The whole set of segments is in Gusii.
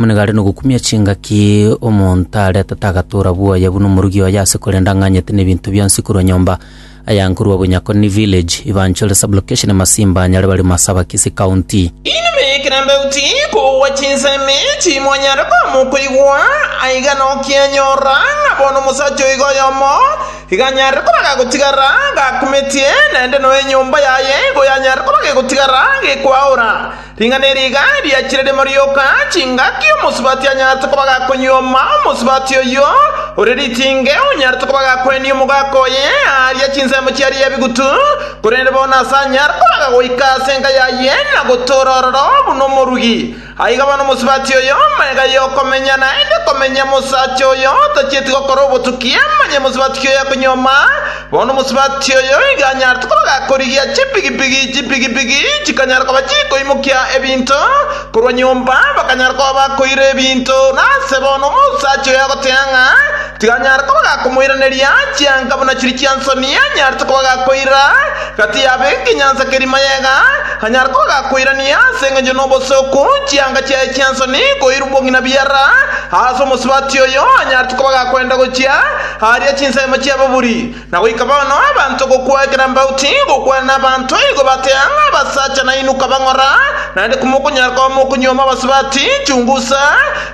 Monigare nogokumia chingaki omonto arete tagatoora bwoye buna omorugi oye ase korenda ang'anyete nebinto bionsi korwa nyomba. Aya nkorwa Bunyakoni Village, Ibanchuri Sub-location, Masimba, Nyare bari Masaba-Kisii County. Inwe bekerandaiti, kogwa chinsemi timonyare koamwa okoigwa, aiga nokianyora ng'a bono omosacha oiga oyomo iga anyare koba gagotigara gakumetie, naende noe enyomba yaye igo yanyare koba gegotigara gekwaora. Ring'ana eri iga riachire rimo rioka, chingaki omosubati anyarete koba gakonyuoma, omosubati oyio ore ritinge onyarete koba gakoenia omogaka oye aaria chinsemo chiaye ebigutu, korende bono ase anyare koaga goika ase enka yaye na gotoora ororo buna omorugi. Aiga bono omosubati oyo magega y'okomenya naende komenya, mosacha oyo tachieti gokora obotuki amanye mosubati ki oyakonyuoma, Bono omosubati oyo iga anyarete koroka korigia chipigipigi, chipigipigi chikanyara koba chikoimokia ebinto korwa nyomba, bakanyara koba bakoira ebinto. Nase bono omosacha oyo agotea ng'a tiganyare koba gakomoiraneria, chianga buna chiri chi'ensoni anyarete koba gakoira gati yabe ekenyansa keria mayega, anyare koba gakoirania ase engencho n'obosooku chianga chiaye chi'ensoni koira obong'ina biara. Aase omosubati oyo anyarete koba gakoenda gochia. Aaria chinsemo chi'ababuri, na goika bono abanto gokwa ekero mbao tigokwana nabanto igo batea ng'a abasacha nainwe kabang'ora, naende komokonyara koba mokonyuoma abasubati chungusa,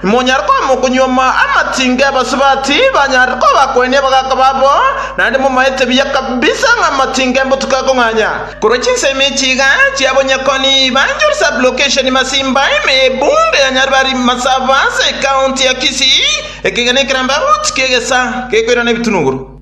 imonyare koba mokonyuoma amatinga y'abasubati banyarire koba bakoenia abagaaka babo, naende momaete buya kabisa ng'a amatinga embotuko ekong'anya. Korwa chinsemo echi iga chiabonyakoni Banjul Sub-Location Masimba ime ye Ebunga ya Nyaribari Masaba ase Ekaonti ya Kisii, Ekegena ekerambe aroche kegesa gekoirana ebitunuguru.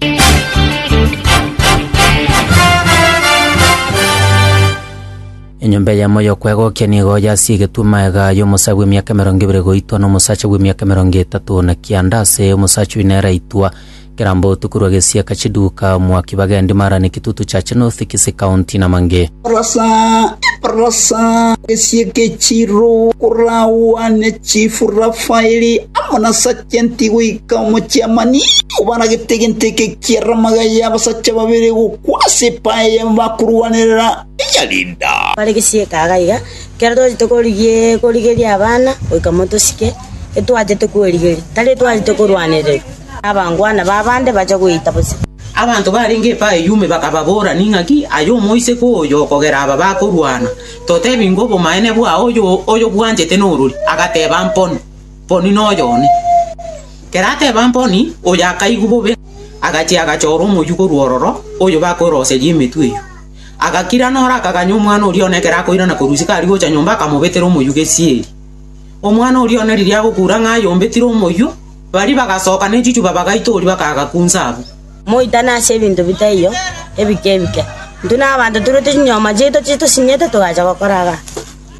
Enyomba eyemo y'okwegokia nigo yasiigetwe magega y'omosae bw'emiaka emerongo ebere goitwa nomosacha bw'emiaka emerongo etato na kianda ase omosacha oyio nere aitwa Kera mbotuko rwa gesiaka chiduka, mwaki bagendi mara ne kitutu cha chinothi kisi kaunti na mange. Rasa, rasa gesiaka echiro koragwa ne chifu Rafaeli amo na sajenti goika omochiamani obaragete egento eke kia ramaga y'abasacha babere gokwa ase epae ya bakorwanerera eya Lida. Bare gesiaka aga iga, kera twari tokorigia korigeria abana goika motosike, etwachete kwerigeria, tari etwachete korwanererwa. na abangwana b'abande bacha gweita bosio. Abanto barenge efa eyio ime bakababora, Ning'aki aye omoiseke oyo okogera aba bakorwana? Totebi ng'a obomaene bwao oyobwanchete norori? Agateba, Mponi, mponi noyo one. Ekero ateba mponi, oyo akaigwa bobe, agachia agachora omoyio korwa ororo, oyo bakweroseria emetwe eyio. Agakira noro akaganya omwana oria one ekero akoirana korwa isiko aria gocha nyomba akamobetera omoyio gesieri. Omwana oria one riria agokura ng'a ayombetire omoyio, Baria bagasoka ne chichuba bagaitoria bakagakunsa abwo. Moitane ase ebinto bitaiyo ebike ebike. Intwe nabanto toruete chinyoma chiaito chitosinyete togacha gokora gaa.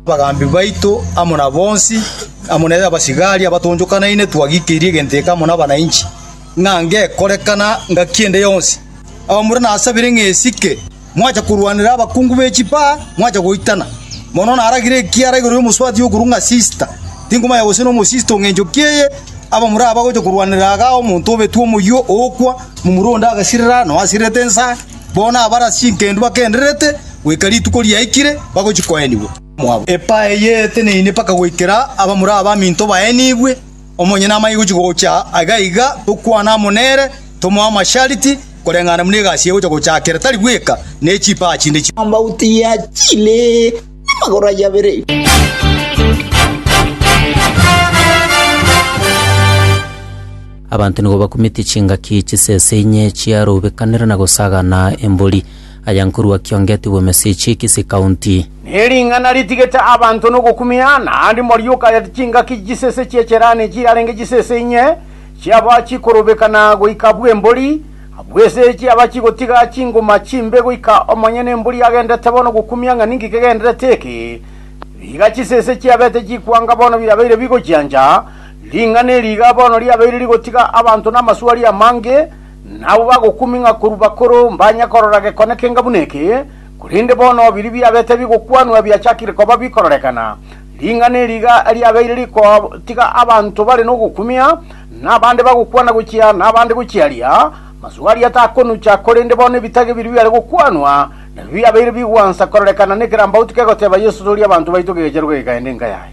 Abagambi baito amo na bonsi, amo ne abasigari abatoonchokanaine twagikeirie egento eke amo nabananchi, ng'a ngekorekana ngaki ende yonsi. Abaamura nasabire ng'a esike. mwacha korwanera abakungu be chipaa, mwacha goitana. Mono naragire ekiara igoro y'omosubati okorwa ng'a Sista, tinkomanya gose nomosista ong'encho ki'eye, aba more aba gocha korwanera igaa omonto obetwe omoyio ookwa, momura onde agasirera, nonya asirerete ensa, bono abare ase chinkendu bakendererete, goika rituko riaikire, bagochia koenigwa. Epaa eye eteneine mpaka goikera abamura abaminto baenigwe. Omonyene amanye gochia gocha aiga aiga, tokwane amo nere, tomoe amashariti, koreng'ana buna egasi eye egocha gochakera, tari bweka ne chipaa chinde chionsi. Amauto ya chile namagoro ayio abere. Abanto nigo bakumete chingaki chisese inye chiarobekanera na gosagana embori. Aya nkorua Kiongeti bw'Emesich, Kisii County. Nering'ana ritigete abanto nogokumia, naende morioka ya chingaki chisese chi'echerani chirarenge chisese inye, chiaba chikorobeka na goika bw'embori, abwo ase chiaba chigotiga chingoma chimbe goika omonyene embori agendete bono gokumia ng'a ninki kegenderete eke. Riga chisese chiabete chikwanga bono birabeire bigochiancha, ring'ana eri iga bono riabeire rigotiga abanto namaswali amange, Nabwo bagokuming'a korwa bakoro mbanye korora gekone kenga buna eke, korende bono biria biabete bigokwanwa biachakire koba bikororekana. Ring'ana eri iga riabeire rigotiga abanto bare nogokumia, na abande bagokwana gochia, na abande gochia aria. Masugo aria takonucha, korende bono ebitage biria biare gokwanwa nabio biabeire bigwansa kororekana nekerambaotu kegoteba Yeso, Toria abanto baito kegechero geikaende enka yaye.